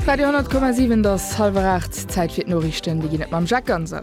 Radio 10,7 et ass halwer 8, Zäit fir d'Noriichten. Déi ginn et mam Jacques Ganser.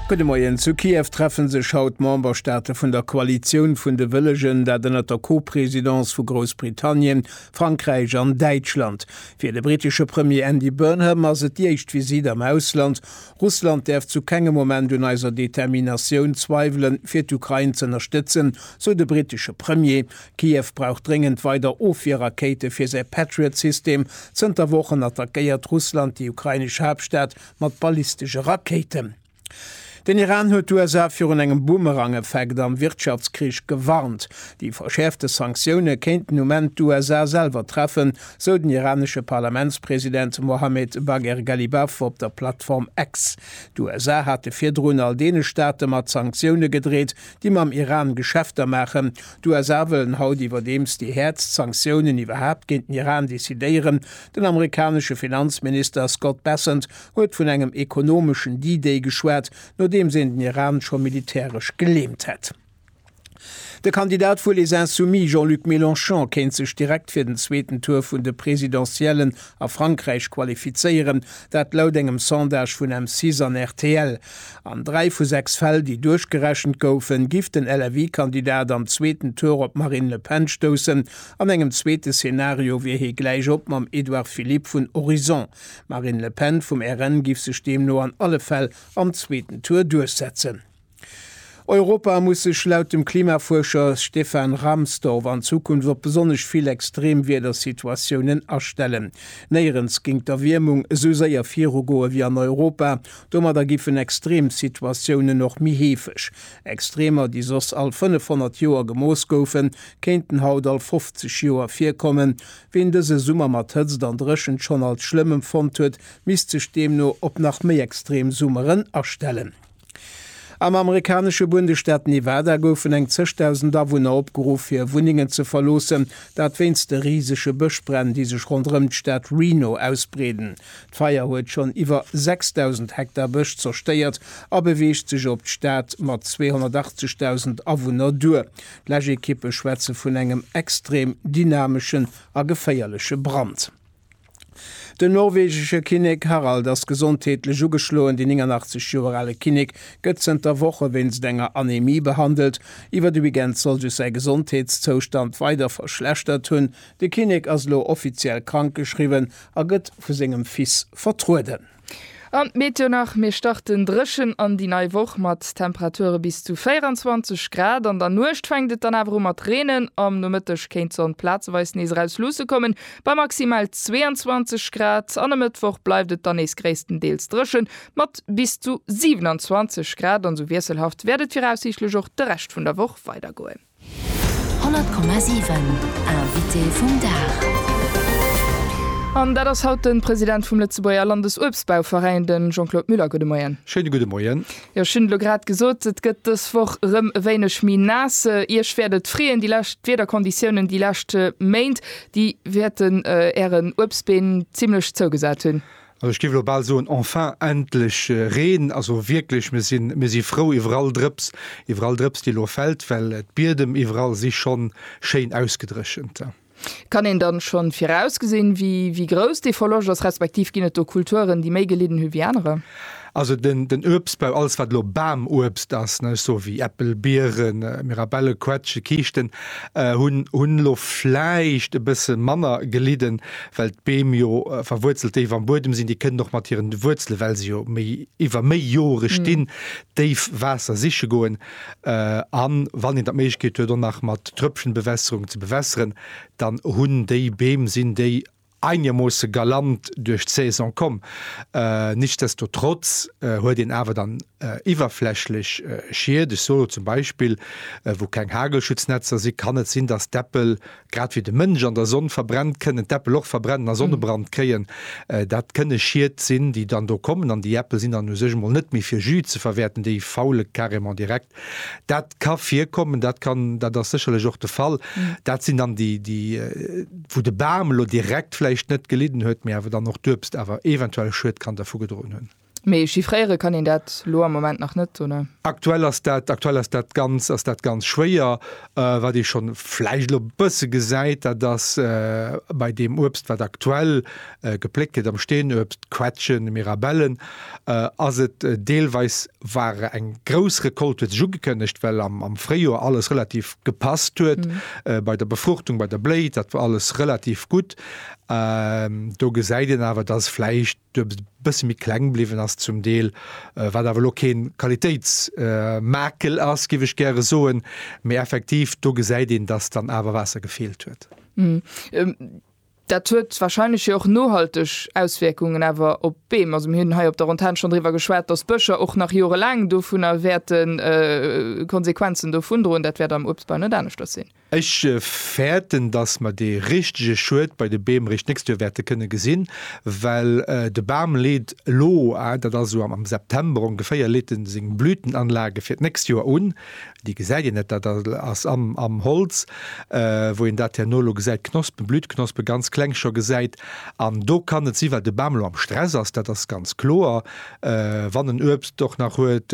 Gudde Moien, Zu Kiew treffe sech haut d'Memberstaate vun der Koalitioun vun de Wëllegen, dat ënnert der Co-Presidence vu Groussbritannien, Frankräich an Däitschland. Fir de brittesche Premier Andy Burnham ass et déi éischt Visitt am Ausland. Russland däerf zu kengem Moment un eiser Determinatioun zweiwelen, fir d'Ukrain z'ënnerstëtzen, sou de brittesche Premier. Kiew brauch dréngend weider Ofwierrakéite fir säi Patriot-System. Zënter Wochen attackéiert Russland déi ukrainesch Haaptstad mat ballistesche Rakéiten. Den Iran huet d'USA virun engem Boomerang-Effekt am Wirtschaftskrich gewarnt. Déi verschäerfte Sanktioune kéinten um Enn d'USA selwer treffen, sou den iranesche Parlamentspresident Mohammed Bagher Ghalibaf op der Plattform X. D'USA hate virdrun all deene Staate mat Sanktioune gedreet, déi mam Iran Geschäfter maachen. D'USA wëllen haut iwwerdeems déi häertst Sanktiounen iwwerhaapt géint den Iran decidéieren. Den amerikanesche Finanzminister Scott Bessent huet vun engem ekonomeschen D-Day geschwat, nodeems een den Iran scho militäresch geleemt hätt. De Kandidat vu Les Insoumis Jean-Luc Mélenchon kéint sech direkt fir den zweeten Tour vun de Presidentiellen a Frankräich qualifizéieren, dat laut engem Sondage vun M6 an rtl. An dräi vu sechs Fäll, déi duerchgerechent goufen, giff den LFI-Kandidat am zweeten Tour op d'Marine Le Pen stoussen. An engem zweete Szenario wier hie gläich op mam Edouard Philippe vun Horizon. D'Marine Le Pen vum RN giff sech deemno an alle Fäll am zweeten Tour duerchsetzen. Europa muss sech laut dem Klimafuerscher Stefan Rahmstorf an Zukunft op besonnesch vill Extremwiedersituatiounen astellen. Néierens géing d'Erwiermung esou séier virugoe wéi an Europa. Domadder giffen Extremsituatiounen och méi heefeg. Extremer, déi soss all 500 Joer gemooss goufen, kéinten haut all 50 Joer virkommen. Ween dëse Summer mat Hëtzt an Dréchent schonn als schlëmm empfonnt huet, misst sech deemno op nach méi extrem Summeren astellen. Am amerikanesche Bundesstaat Nevada goufen eng zeg Dausend Awunner opgeruff, hir Wunnengen ze verloossen, dat wéinst de risege Bëschbränn, déi sech ronderëm d'Stad Reno ausbreeden. D'Feier huet schonn iwwer 6.000 Hektar Bësch zerstéiert a beweegt sech op d'Stad mat 280 Dausend Awunner duer. D'Läschekippe schwätze vun engem extrem dynameschen a geféierleche Brand. Den norwegesche Kinnek Harald ass gesondheetlech ugeschloen. Dee 89 Joer ale Kinnek gëtt zënter Woche wéinst enger Anemie behandelt. Iwwer de Weekend soll sech säi Gesondheetszoustand weider verschlechtert hunn. De Kinnek ass elo offiziell krankgeschriwwen a gëtt vu sengem Fils vertrueden. An d'Meteo nach, Mir starten dréchen an déi nei Woch mat Temperature bis zu 24 Grad. An der Nuecht fänkt et dann awer u mat reenen. Am Nomëtteg kéint d'Sonn plazeweis nees eraus luusse kommen, bei maximal 22 Grad. An e Mëttwoch bleift et dann nees gréisstendeels dréchen, mat bis zu 27 Grad. An esou wiesselhaft wäert et viraussiichtlech och de Rescht vun der Woch weidergoen. 100,7 Invité vum Dag An dat ass haut de President vum Lëtzebuerger Landesuebstbauveräin, de Jean-Claude Muller. Gudde Moien. Schéine gudde Moien. Jo, ech hunn et elo grad gesot, et gëtt dës Woch erëm e wéineg méi naass. Iech wäert et freeën, déi lescht Wiederkonditiounen, déi lescht Méint, déi wäerten Ären Uebstbeem zimlech zougesat hunn. Also ech géif elo bal soen, enfin, endlech Reen. Also wierklech, mir sinn, mir si frou iwwer all Drëps, iwwer all Drëps, déi elo fält, well d'Biedem iwwerall si schonn schéin ausgedréchent. Kann een dann schonn virausgesinn, wéi grouss dee Verloscht ass, respektiv ginn et do Kulturen, déi méi gelidden hunn, wéi anerer? Also den, den Uebstbau, alles wat elo Bamuebst ass, ne, ech soe wéi Äppel, Bieren, Mirabelle, Quetsche, Kiischten, hunn, hunn elo vläicht e bësse manner gelidden, well d'Beem jo verwuerzelt déif am Buedem sinn. Déi kënnen och mat hiren Wuerzele, well se jo méi, iwwer méi Jore stinn, déif Waasser siche goen. A wann een dann d'Méiglechkeet huet och nach mat Tröpfchenbewässerung ze bewässeren, dann hunn déi Beem, sinn déi einermoosse galant duerch d'Saison komm. Nichtsdestotrotz huet een awer dann iwwerflächlech Schied, ech soe lo zum Beispill, wou keng Hagelschutznetzer sinn, kann et sinn, dass d'Äppel, grad wéi de Mënsch an der Sonn verbrennt, kënnen d'Äppel och verbrennen a Sonnebrand kréien. Dat kënne Schied sinn, déi dann do kommen an déi Äppel sinn dann u sech emol net méi fir Jus ze verwäerten, déi faule carrément direkt. Dat ka virkommen, dat kann, dat ass sécherlech och de Fall. Dat sinn dann déi, déi wou de Bam elo direkt vläicht net gelidden huet, mee awer dann och d'Uebst awer eventuell Schued kann dervu gedroen hunn. Mee chiffréiere kann een dat elo am Moment nach net, oder? Aktuell ass dat, aktuell ass dat ganz, ass dat ganz schwéier. Wat ee schonn vläicht elo e bësse gesäit, dat ass bei deem Uebst, wat aktuell gepléckt gëtt am Steenuebst, Quetschen, Mirabellen, ass et deelweis, war eng grouss Recolte huet sech ugekënnegt, well am Fréijoer alles relativ gepasst huet bei der Befruchtung, bei der Bléi, dat war alles relativ gutt. Do gesäit een awer, datt vläicht e bësse méi kleng bliwwen ass zum Deel, wat awer elo kee Qualitéitsmakel ass, géif ech gäre soen. Mee effektiv do gesäit een, datt dann awer Waasser gefeelt huet. Dat huet wahrscheinlech jo och nohalteg Auswierkungen awer op d'Beem. Also mir hunn hei op der Antenn schonn driwwer geschwat, dass d'Bëscher och nach jorelaang dovunner wäerte Konsequenzen dovun droen. Dat wäert am Uebstbau net aneschters sinn. Ech fäerten, dass mer dee richtege Schued bei de Beem eréischt d'nächst Joer wäerte kënne gesinn, well de Bam leet elo, dat ass esou am September ongeféier, leet e seng Blütenanlage fir d'nächst Joer un. Déi gesäit een net, dat ass am Holz, wou een dat herno elo gesäit, d'Knospen, d'Blütknospe ganz kleng scho gesäit. An do kann et si well de Bam elo am Stress ass, dat ass ganz kloer, wann en Uebst och nach huet,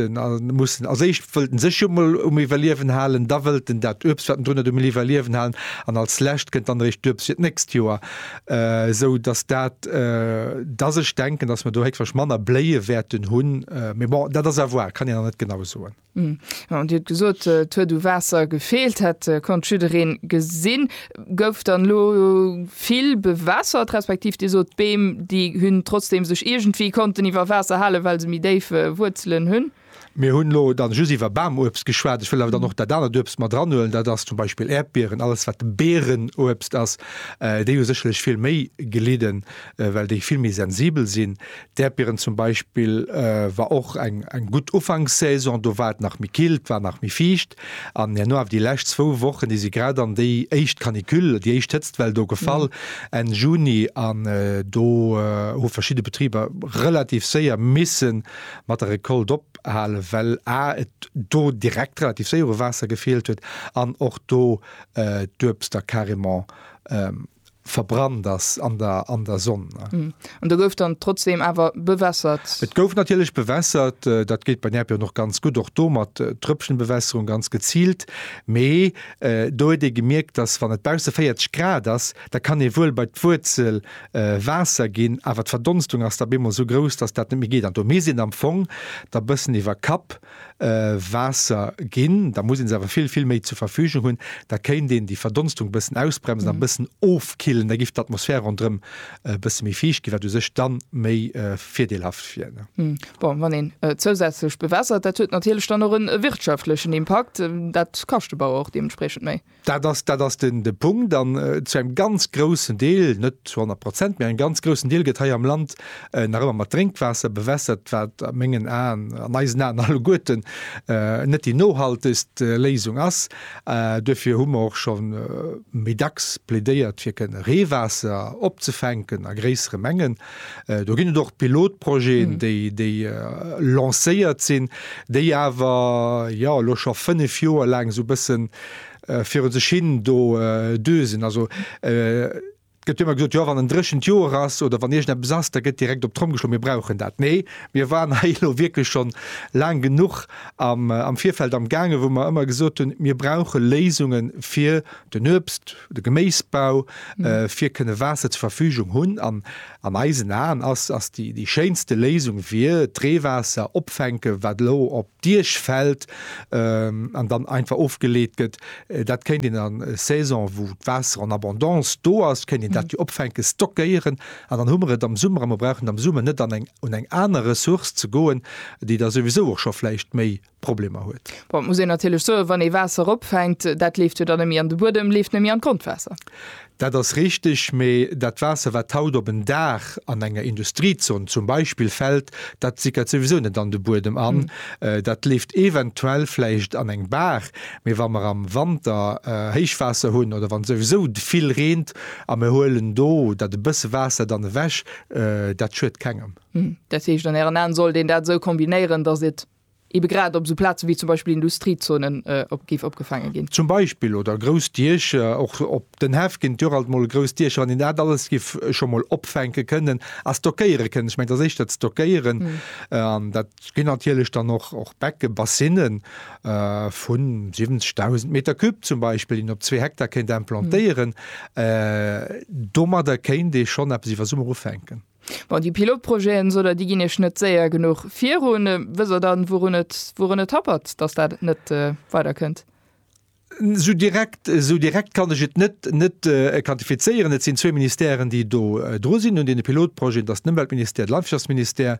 muss en, als éischt wëllt en sech jo emol um Iwwerliewen halen, da wëllt en dat Uebst wat en drun huet um Iwwerliewen halen an als lescht kënnt dann eréischt d'Uebst fir d'nächst Joer. Esou datt dat, datt ech denken, datt mer do héchstwahrsch manner Bléie wäerten hunn, mee bon, dat ass à voir, kann een nach net genau soen. Hm, Dir huet gesot, et huet u Waasser gefeelt, dat konnt jiddereen gesinn. Gouf dann elo vill bewässert, respektiv Dir sot, d'Beem, déi hunn trotzdeem sech iergendwéi konnten iwwer Waasser halen, well se méi déif Wuerzelen hunn? Mir hunn elo dann just iwwer Bamuebst geschwat. Ech wëll awer dann och dat anert Uebst mat eranhuelen, dat ass zum Beispill Äerdbieren, alles wat Bierenuebst ass. Déi hu sécherlech vill méi gelidden, well déi vill méi sensibel sinn. D'Äerdbieren zum Beispill war och eng eng gutt Ufankssaison. Do war et nach méi kill, et war nach méi fiicht. An herno awer déi lescht zwou Wochen, déi si grad an déi éischt Canicule, déi éischt Hëtztwell do gefall, Enn Juni. An do hu verschidde Betriber relativ séier misse mat der Recolte ophalen, well a et do direkt relativ séier u Waasser gefeelt huet an och do d'Uebster carrément verbrannt ass an der an der Sonn. An do gouf dann trotzdem awer bewässert? Et gouf natierlech bewässert, dat geet bei Nerpion och ganz gutt, och do mat Trëppchenbewässerung, ganz geziilt. Mee do huet ee gemierkt, datt wann et bausse 40 Grad ass, da kann ee wuel bei d'Wuerzel Waasser ginn, awer d'Verdonstung ass da op eemol esou grouss, datt dat net méi geet. An do misst een am Fong da bëssen iwwer Kapp Waasser ginn, da muss ee se awer vill, vill méi zur Verfügung hunn. Da kéint een déi Verdonstung e bëssen ausbremsen a e bëssen ofkillen. Da giff d'Atmosphär ronderëm e bësse méi fiicht ginn, wat u sech dann méi virdeelhaft wier. Bon, wann een zousätzlech bewässert, dat huet natierlech dann och e wirtschaftlechen Impakt. Dat kascht de Bauer och deementspriechend méi. Dat ass, dat ass den, de Punkt. An zu engem ganz groussen Deel, net zu honnert Prozent, mä engem ganz groussen Deel gëtt hei am Land nach ëmmer mat Drénkwaasser bewässert, wat a mengen Aen, an eisen Aen alleguerten, net déi nohaltegst Léisung ass. Duerfir hu mer och scho méi dacks plädéiert, fir kënnen Reewaasser opzefänken a gréissere Mengen. Do ginn et och Pilotprojeten, déi lancéiert sinn, déi awer, jo, elo scho fënnef Joer laang esou e bësse viru sech hin do düsen. Also, et gëtt jo ëmmer gesot, jo, wann en dréchent Joer ass oder wann iergendeppes ass, da gëtt direkt op d'Tromm geschloen, mir brauchen dat. Nee, mir waren hei elo wierklech schonn laang genuch am Virfeld amgaangen, wou mer ëmmer gesot hunn, mir brauche Léisunge fir den Uebst de Geméisbau fir kënne Waasser zur Verfügung hunn an an eisen Aen ass ass déi déi schéinste Léisung wier d'Reewaasser opfänken, wat elo op d'Diech fält an dann einfach ofgeleet gëtt. Dat kéint een an Saison, wou d'Waasser en abondance do ass, kéint een dat jo opfänken, stockéieren an dann hu mer et am Summer a mer brauchen am Summer net an eng un eng aner Ressource ze goen, déi da souwisou och scho vläicht méi Problemer huet. Bon, et muss een natierlech soen, wann ee Waasser eropfänkt, dat leeft jo dann net méi an de Buedem, leeft net méi an d'Grondwaasser. Dat ass richteg, mee dat Waasser, wat haut op en Dag an enger Industriezon zum Beispill fält, dat sickert souwisou net an de Buedem an. Dat leeft eventuell vläicht an eng Baach, mee wa mer am Wanter Héichwaasser hunn oder wann souwisou vill reent a mir huelen do dat e bësse Waasser dann ewech, dat schuet kengem. Dat heescht, an Ären Aen sollt een dat esou kombinéieren, datt et ebe grad op esou Plaze wéi zum Beispill Industriezonen, géif opgefaange ginn. Zum Beispill, oder grouss Diecher, och op den Häff ginn et jo och alt mol grouss Diecher, wann een dat alles giff scho mol opfänke kënnen a stockéiere kënnen. Ech mengen, et ass éischter d'Stockéieren an dat ginn natierlech dann och och Becke, Bassine vu 70.000 Meter Cube zum Beispill, déi een op zwee Hektar kéint implantéieren. Domadder kéint ee schonn eppes iwwer Summer ufänken. Bon, déi Pilotprojeten, esou der, déi ginn Iech net séier genuch virun. Wësst Der dann, wourun et, wourun et happert, datt dat net weiderkënnt? Esou direkt, esou direkt kann ech et net, net quantifizéieren. Et sinn zwee Ministèren, déi do dru sinn un deene Pilotprojeten, dat ass den Ëmweltministère, de Landwirtschaftsministère.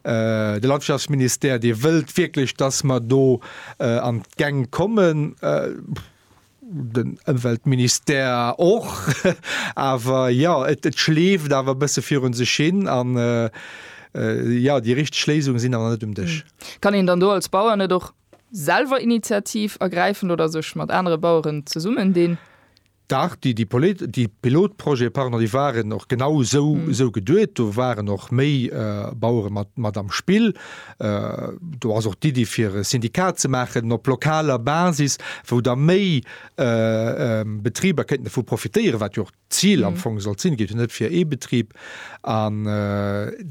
De Landwirtschaftsministère, dee wëllt wierklech, datt mer do an d'Gäng kommen. den Ëmweltministère och, awer jo, et schleeft awer e bësse virun sech hin an jo, déi richteg Léisungen sinn awer net um Dësch. Kann een dann do als Bauer net och selwer Initiativ ergräifen oder sech mat anere Baueren zesummen dinn? Dach, déi Pilotprojete, pardon, déi waren och genau esou geduet. Do waren och méi Bauere mat am Spill. Do ass och d'Iddi fir e Syndikat ze maachen op lokaler Basis, wou da méi Betriber kéinten dovu profitéieren, wat jo och d'Zil am Fong sollt sinn. Et geet jo net fir ee Betrib. An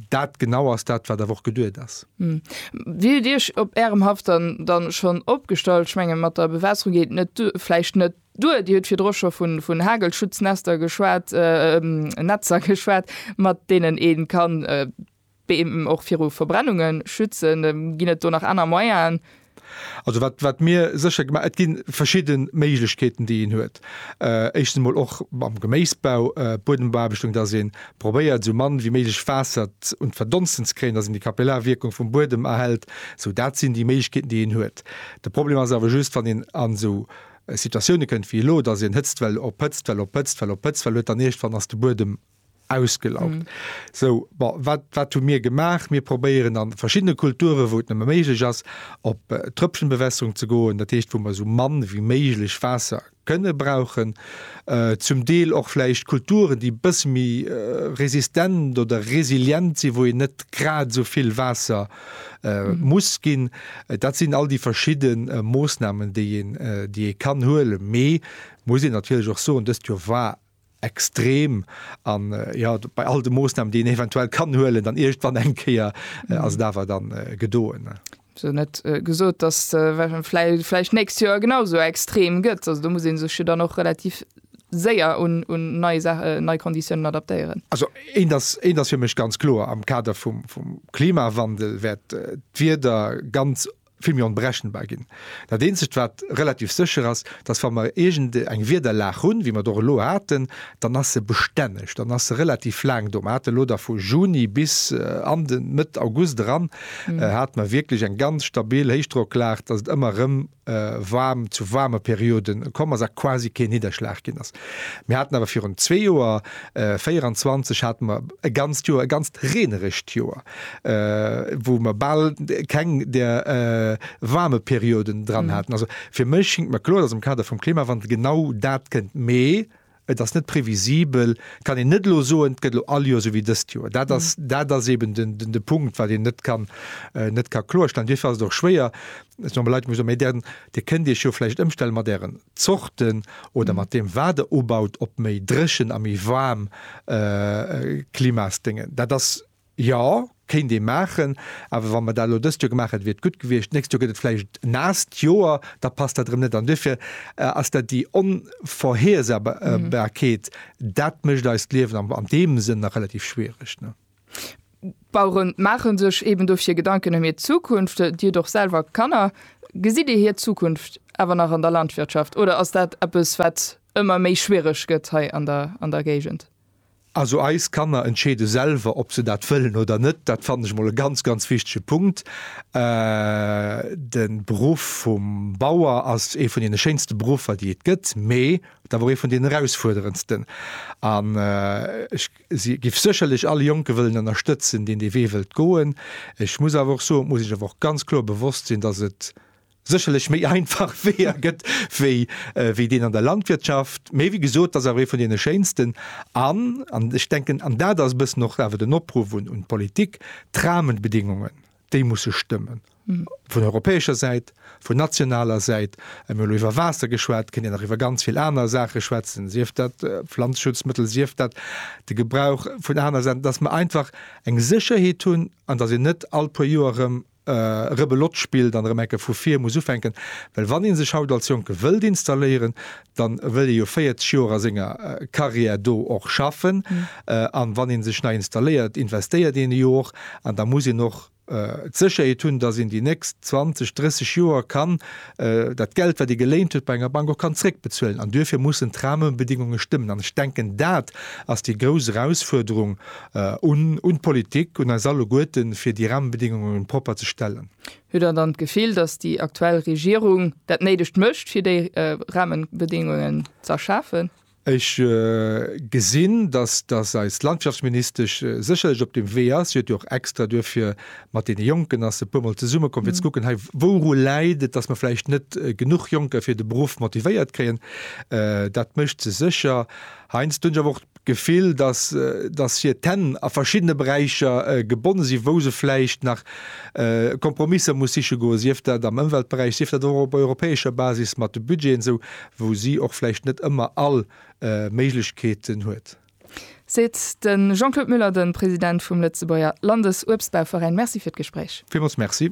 dat genau ass dat, wat awer och geduet ass. Wéi hutt Dir Iech op Ärem Haff dann schonn opgestallt? Ech mengen, mat der Bewässerung geet et vläicht net duer. Dir hutt virdru scho vun Hagelschutznetzter geschwat, mat deenen ee kann D'Beem och viru Verbrennunge schützen. Ginn et do nach aner Moyenen? Also wat, wat mir sécher gemaach, et gi verschidde Méiglechkeeten, déi een huet. Éischtens emol och am Geméisbau, Buedembeaarbeschtung, dass ee probéiert, esou mann wéi méiglech Waasser un d'Verdonsten ze kréien, dass een déi Kapillarwierkung vum Buedem erhält. Esou, dat sinn déi Méiglechkeeten, déi een huet. De Problem ass awer just, wann een an esou Situatioune kënnt wéi elo, dass een Hëtztwell op Hëtztwell op Hëtztwell op Hëtztwell huet, dann iergendwann ass de Buedem ausgelaugt. Sou, bon, wat, wat hu mir gemaach? Mir probéieren an verschiddene Kulturen, wou et nëmme méiglech ass, op Tröpfchenbewässerung ze goen, dat heescht, wou mer esou mann wéi méiglech Waasser kënne brauchen. Zum Deel och vläicht Kulturen, déi e bësse méi resistent oder resilient sinn, wou een net grad esou vill Waasser muss ginn. Dat sinn all déi verschidde Moosnamen, déi een, déi ee kann huelen. Mee muss een natierlech och soen, dëst Joer war extrem an jo bei all de Moosnamen déi een eventuell kann huelen dann iergtwann eng Kéier mhm. ass dawer dann äh, gedoen. So net äh, gesot, dass äh, fleich nächst Joer genauso extrem gëtt. Also du muss en sech dann noch relativ séier un, un nei, äh, nei Konditionen adaptéieren. Also en das, en das fir mech ganz klo am Kader vum, vum Klimawandel wäert äh, d'Wieder ganz vill méi onberechenbar ginn. Dat eenzegt wat relativ sécher ass, datt wa mer iergend eng Wiederlag hunn, wéi mer et och elo haten, dann ass se bestänneg, dann ass se relativ laang do. Mer hate elo da vu Juni bis an de Mëtt August eran hate mer wierklech eng ganz stabil Héichdrocklag, datt et ëmmer erëm waarm, zu waarme Periode komm ass a quasi keen Nidderschlag ginn ass. Mir haten awer virun zwee Joer, 24, hate mer e ganzt Joer, e ganzt reenerescht Joer. wou mer bal keng där waarme Perioden dran haten. Also fir mech schingt mer kloer, datt am Kader vum Klimawandel genau dat kënnt. Mee et ass net previsibel, et kann een net elo soen, et gëtt elo all Joer esou wéi dëst Joer. Dat ass, dat ass eeben den, den, de Punkt, wat een net kann, net ka kloerstellen. Duerfir ass et och schwéier, ech soe mol Leit, muss soen, mä där, Dir kënnt Iech jo vläicht ëmstellen mat Ären Zorten oder mat deem, wat Der ubaut, op méi dréchen a méi waarm Klimasdéngen. Dat ass Jo, kéint ee maachen. Awer wa mer dat elo dëst Joer gemaach hätte, wier et gutt gewiescht. D'nächst Joer gëtt et vläicht en naasst Joer, da passt dat erëm net. An duerfir ass dat déi Onvorhersehbarkeet, dat mécht eist Liewen an deem Sënn nach relativ schwiereg. D'Bauere maache sech eeben dofir Gedanken ëm hir Zukunft. Dir hutt och selwer Kanner. Gesitt Dir hir Zukunft awer nach an der Landwirtschaft oder ass dat eppes, wat ëmmer méi schwiereg gëtt hei an der Géigend? Also eis Kanner entscheede selwer, ob se dat wëllen oder net. Dat fannen ech emol e ganz, ganz wichtege Punkt. De Beruff vum Bauer ass ee vun deene schéinste Beruffer, déi et gëtt, mee et awer och ee vun deenen erausfuerderendsten. An ech géif sécherlech all Jonke wëllen ënnerstëtzen, deen dee Wee wëllt goen. Ech muss awer och soen, et muss ee sech awer och ganz kloer bewosst sinn, dass et, sécherlech méi einfach Weeër gëtt wéi wéi deen an der Landwirtschaft, mä wéi gesot, dat ass awer ee vun deene schéinsten. An, an ech denken, an dat ass e bëssen och awer den Opruff un d'Politik, d'Rahmenbedingungen, déi musse stëmmen, vun europäescher Säit, vun nationaler Säit. Mir hunn elo iwwer Waasser geschwat, kënnt een nach iwwer ganz vill aner Saache schwätzen, sief dat Pflanzschutzmëttel, sief dat de Gebrauch vun anere Saachen, dass mer einfach eng Sécherheet hunn an dass een net all puer Joer erëm Rebelot spillt an erëm enke vu vir muss ufänken. Well wann ee sech haut als Jonke wëllt installéieren, dann wëll ee jo 40 Joer a senger Carrière do och schaffen. An wann ee sech nei installéiert, investéiert een e jo och. An da muss een och d'Sécherheet hunn, dass een déi nächst 20, 30 Joer kann dat Geld, wat ee geléint huet bei enger Bank, och kann zréckbezuelen. An duerfir mussen d'Rahmenbedingungen stëmmen. An ech denken, dat ass déi grouss Erausfuerderung Un d'Politik, un eis alleguerten, fir déi Rahmenbedingungen propper ze stellen. Hutt Der dann d'Gefill, dass déi aktuell Regierung dat Néidegt mécht, fir déi Rahmenbedingungen ze erschafen? Ech gesinn, dass eis Landwirtschaftsministesch sécherlech op deem Wee ass. Si huet jo och extra duerfir mat deene Jonken, ass se e puer Mol zesumme komm, fir ze kucken, hei, wouru läit et, dass mer vläicht net genuch Jonker fir de Beruff motivéiert kréien. Dat mécht se sécher. Heiansdo hunn ech awer och d'Gefill, dass, dass hir d'Hänn a verschiddene Beräicher gebonne sinn, wou se vläicht nach Kompromisser muss siche goen, sief dat am Ëmweltberäich, sief dat och op europäescher Basis mat de Budgeten, esou wou si och vläicht net ëmmer all Méiglechkeeten huet. Seet de Jean-Claude Muller, de President vum Lëtzebuerger Landesuebstbauveräin. Merci fir d'Gespréich. Villmools Merci.